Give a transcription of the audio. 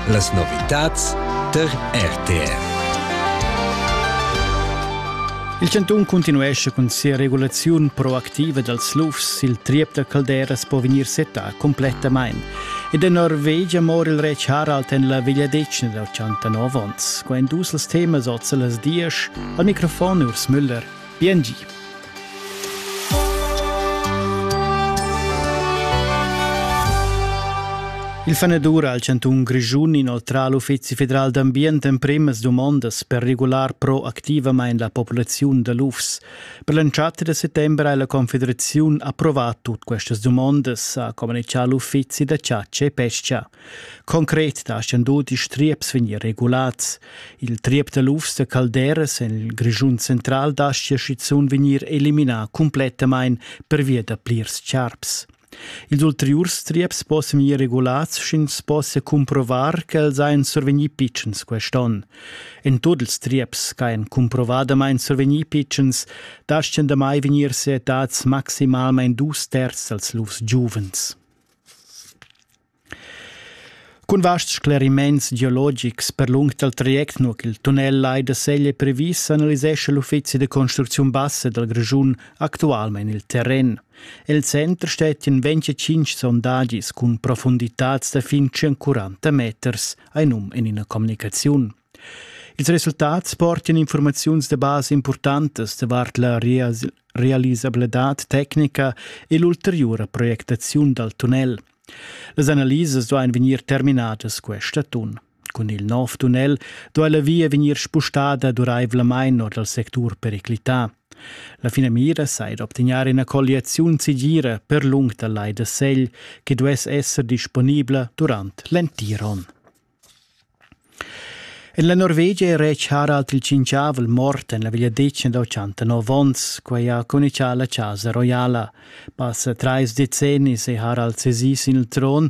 Las novitads tar RTR. Il cantun cuntinuescha cun sia regulaziun proactiva dals lufs. Il triep da calderas po vegnir setà complettamain. Ed en Norvegia mora il retg Harald en la vegliadetgna dal 69 onns. Qua èn dus els temas oz las dias. Al microfon Urs Müller. Bien gi. Il fanedur al chantun Grischun inoltrà l'Uffizi federal d'ambient emprimas dumondas per regular proactivamain la populaziun da lufs. Per l'entschatta da settembre ha la Confederaziun approvà tut questas dumondas, ha communichà l'Uffizi da chatscha e pesca. Concret daschian tut ils trieps vegnir regulats. Il triep da lufs da calderas en il Grischun central dastia schizunt vegnir eliminà cumplettamain pervia da plirs charps. Ils ulteriurs trieps possono vegnir regulats, sch'ins possa cumprovar ch'els ein survegni pitschens quest'onn. In tutti ils trieps che ein cumprovadamain survegni pitschens, daschian damai vegnir settads maximalmain dus terz als lufs giuvens. Cun vasts scleriments geologics per lung dal traject nua ch'il tunnel lai da Segl è previs analisescha l'uffizi da construcziun bassa dal Grischun actualmain il terren. El center stettian 25 sondagis cun profunditads da fin 40 meters, hai num en ina communicaziun. Ils resultats portan informaziuns da basa impurtantas davart la realisabladad tecnica e l'ulteriura projectaziun dal tunnel. Las analisas duain vegnir terminadas questa atun. Cun il nov tunnel duai la via vegnir spustada duraivlamain or dal sectur periclità. La finamira sei d'obtegnar ina colliaziun segira per lung dal lai da Segl che duess esser disponibla durant l'entir onn. En la Norvegia è retg Harald il Tschintgavel mort en la vegliadetgna da ottantanov onns. Quai ha communitgà la Chasa roiala. Passa trais decennis è Harald sesì sin il tron